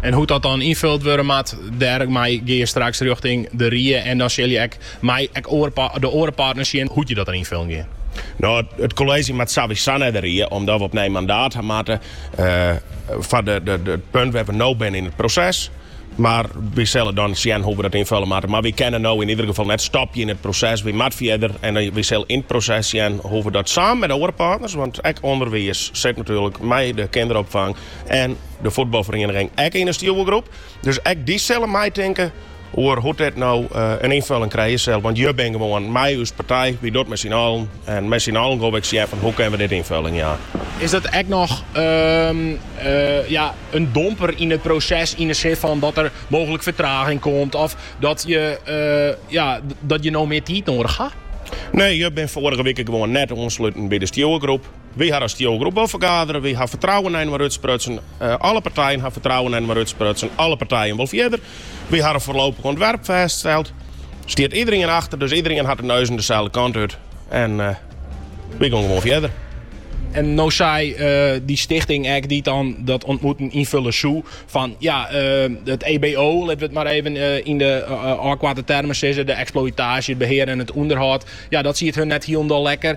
En hoe't dat dan ynfuld wurde moat, dêrmei gean je straks rjochting de rie en dan sil je ek mei de oare partners sjen hoe't je dat dan ynfillen gean. No, it kolleezje moat sowieso nei de rie, omdat we opnij mandaat ha moatte foar it punt wêr't we no binne yn it proses. Mar we sille dan sjen hoe't we dat ynfille moatte. Mar we kinne no yn ieder gefal net stopje yn it proses. We moatte fierder en we sille yn it proses sjen hoe't we dat samen mei de oare partners, want ek ûnderwiis sit natuerlik mei de kinderopfang, En de fuotbalferiening ek yn de stjoergroep. Dus ek dy sille meitinke oer hoe't dit no eh, in ynfulling krije sil. Want je binne gewoan mei ús partij, wy dogge it mei syn allen. En mei syn allen gonne we sjen fan hoe kinne we dit ynfulling jaan. Is dat ek noch ehm, eh, ja, in domper yn it proses yn de sin fan dat der mooglik fertraging komt of dat je, eh, ja, dat je no mear tiid nedich ha? Nee, je binne foarige wike gewoon net oansluten by de stjoergroep. Wy ha yn 'e stjoergroep wol fergadere. Wy ha fertrouwen nei inoar útsprutsen. Alle partijen ha fertrouwen nei inoar útsprutsen. Alle partijen wol fierder. Wy ha in foarlopich ûntwerp fêststeld. Stiet iderien achter, dus iderien hat de neuzen deselde kant út. En wy gonne gewoan fierder. En no sei dy stichting ek, dy't dan dat ûntmoeten ynfullen soe, fan ja, it EBO, litte we it mar even yn de ôfkoarte termen sizze, de eksploïtaasje, it behear en it ûnderhâld, ja, dat siet hun net hielendal lekker.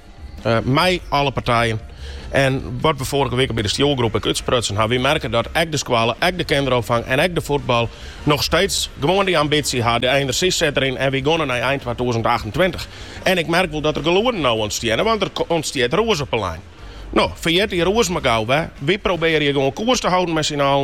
Mei alle partijen. En wat we foarige wike by de stjoergroep ek útsprutsen ha, we merke dat ek de skoalle, ek de kinderopfang en ek de fuotbal noch steeds gewoan dy ambysje ha. De enerzjy sit der yn en we gonne nei ein twatûzen achtentweintich. En ik merk wol dat der gelûden no ûntstjinne, want der ûntstjit rûs op 'e line. No, ferjit dy rûs mar gau wer. We probearje gewoan koers te holden mei syn allen.